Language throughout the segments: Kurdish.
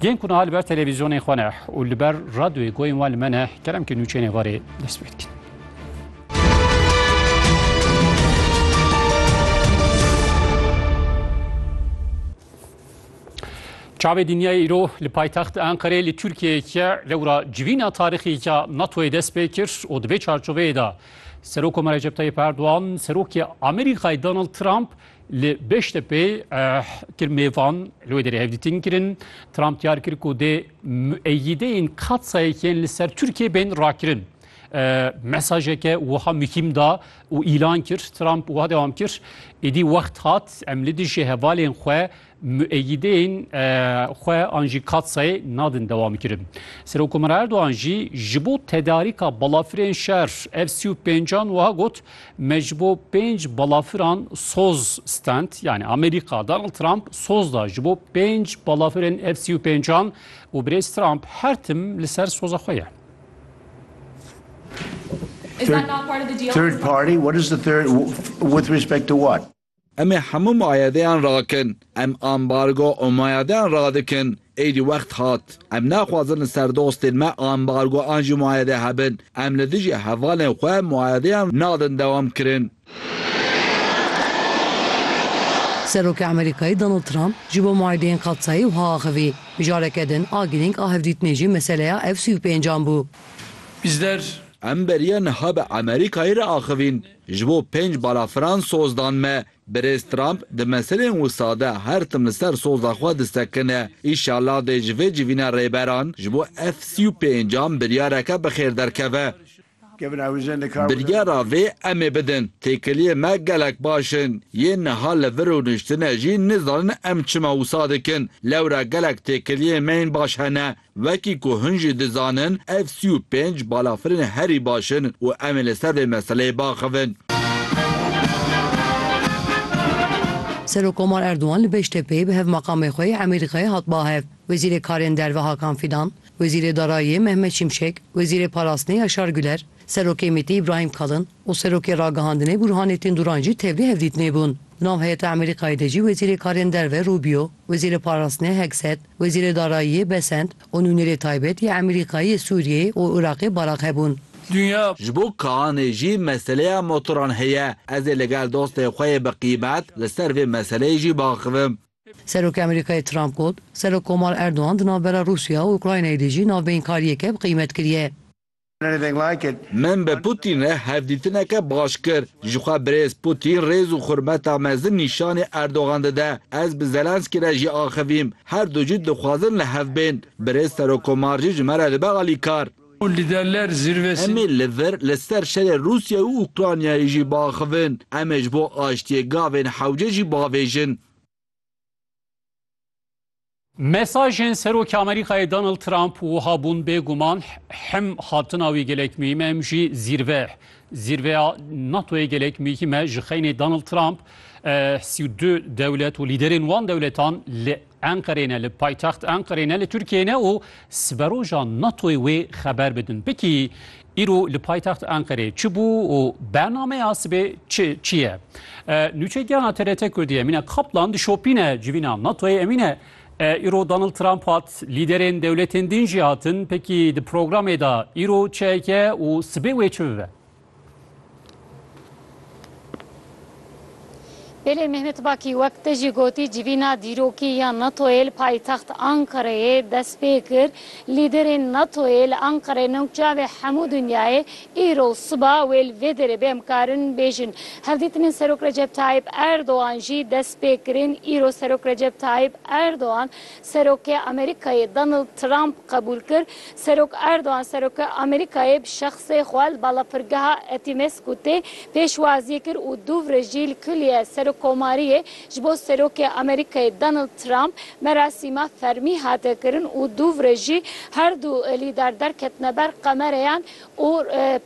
Yên ku niha li ber televîzyonên xwe ne û li ber radyoyê goyên wan li me ne keremkî nûçeyên êvarê dest pê dikin. Çavê dinyayê îro li paytextê Enqerê li Tirkiyeyeke lewra civîna tarîxîka NATOyê dest pê kir û di vê çarçoveyê de Serok Koma Recep Tayyip Erdogan, Serokê Amerîkayê Donald Trump Li Beştepê kirmêvan li wê derê hevdîtin kirin. Trump diyar kir ku dê müeyyideyên Katsayek yên li ser Tirkiyê bên rakirin. Mesajeke wiha muhîm da û îlan kir. Trump wiha dewam kir, Êdî wext hat em li dijî hevalên xwe Mueyîdên xwe an jî Katsayê nadin dewamkirin. Serokomara Erdogan jî ji bo tedarîka balafirên şer ev sî û pêncan wiha got, Me ji bo pênc balafiran soz stend, yanî Amerîka Donald Trump soz da ji bo pênc balafirên ev sî û pêncan û birêz Trump her tim li ser soza xwe ye. Is that not part of the deal? Third party? What is the third? With respect to what? Em ê hemû muayedeyan rakin. Em ambargo û muayedeyan radikin. Êdî wext hat. Em naxwazin li ser dostên me ambargo an jî muayede hebin. Em li dijî hevalên xwe muayedeyan nadin dewam kirin. Serokê Amerîkayê Donald Trump ji bo muayedeyên Qadsayê wiha axivî, Mijareke din a girîng a hevdîtinê jî meseleya F-sî û pênc an bû. Em beriya niha bi Amerîkayê re axivîn. Ji bo pênc balafiran soz dan me. Birêz Trump di meselên wisa de her tim li ser soza xwe disekine. Îşallah dê ji vê civîna rêberan ji bo ev sî û pêncan biryareke bi xêr derkeve. Biryara vê em ê bidin. Têkiliyên me gelek baş in. Yên niha li vir û niştine jî nizanin em çima wisa dikin. Lewra gelek têkiliyên me yên baş hene. Wekî ku hin jî dizanin ev sî û pênc balafirên herî baş in û em ê li ser vê meseleyê biaxivin. Serokkomar Erdogan li Beştepê bi hevmaqamê xwe yê Emîr Xê hat bahev, Wezîrê Karên Derve Hakan Fidan, Wezîrê Darayiyê Mehmet Şimşek, Wezîrê Parastinê Yaşar Güler, Serokê MÎT'ê Îbrahîm Kalin, û Serokê Ragihandinê Burhanê Tînduran jî tevlî hevdîtinê bûn. Nav heyeta Amerîkayê de jî Wezîrê Karên Derve Rubio, Wezîrê Parastinê Hegseth, Wezîrê Darayiyê Besent û Nûnerê Taybet yê Amerîkayê yê Sûriyeyê û Iraqê Barak hebûn. Dinya. Ji bo Kaanê jî meseleya motoran heye. Ez ê ligel dostên xwe yê bi qîmet li ser vê meseleyê jî biaxivim. Serokê Amerîkayê Trump got, Serokkomar Erdogan di navbera Rûsya û Ukraynayê de jî navbeyinkariyeke bi qîmet kiriye. Min bi Pûtîn re hevdîtineke baş kir. Jixwe birêz Pûtîn rêz û xurmeta mezin nîşanî Erdogan dide. Ez bi Zelenskî re jî axivîm. Her du jî dixwazin li hev bên. Birêz Serokkomar jî ji me re dibe alîkar. Em ê li vir li ser şerê Rûsyayê û Ûkranyayê jî biaxivin. Em ê ji bo aştiyê gavên hewce jî biavêjin. Mesajên Serokê Amerîkayê Donald Trump wiha bûn bêguman him hatina wî gelek muhîm e him jî zîrve zîrveya NATOyê gelek muhîm e ji xeynê Donald Trump sî û du dewlet û lîderên wan dewletan li Enqerê ne li paytext Enqerê ne li Tirkiyeyê ne û siberoja NATOyê wê xeber bidin. Pikî Îro li paytext Enqerê çi bû û bernameya sibê çi çi ye? Nûçegiyana TRT Kurdî Emîne Kaplan di şopîne civîna NATO'yê Emîne îro Donald Trump hat, lîderên dewletên din jî hatin. Pekî di programê de îro çi heke û sibê wê çi bibe? Hêlê Mehmet Bakî wek te jî gotî civîna dîrokî ya NATO'yê li paytext Ankareyê dest pê kir. Lîderên NATO'yê li Ankareyê nokçavê hemû dinyayê îro û siba wê li vê derê bê em karin bêjin. Hevdîtinên Serok Recep Tayyîp Erdogan jî dest pê kirin. Îro Serok Recep Tayyîp Erdogan Serokê Amerîkayê Donald Trump qebûl kir, Serok Erdogan Seroka Amerîkayê bi şexsê xwe li balafirgeha Etimesgûtê pêşwazî kir û Dûvre jî li Kulîye Serokomariyê ji bo Serokê Amerîkayê Donald Trump merasîma fermî hate kirin û Dûvre jî herdu lîder derketine ber qemereyan û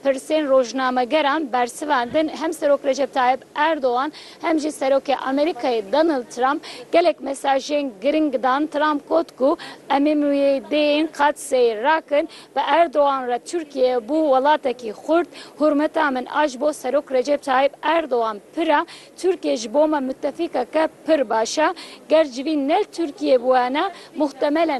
pirsên rojnamegeran bersivandin, hem Serok Recep Tayyip Erdogan hem jî Serokê Amerîkayê Donald Trump gelek mesajên giring dan. Trump got ku em ê mûyêdeyên qad seyr rakin. Bi Erdogan re Tirkiye bû welatekî xurt. Hurmeta min a ji bo Serok Recep Tayyip Erdogan pir e. Tirkiye ji bo me mutefîkeke pir baş e. Ger civîn ne Tirkiye bûyana, muhtemelen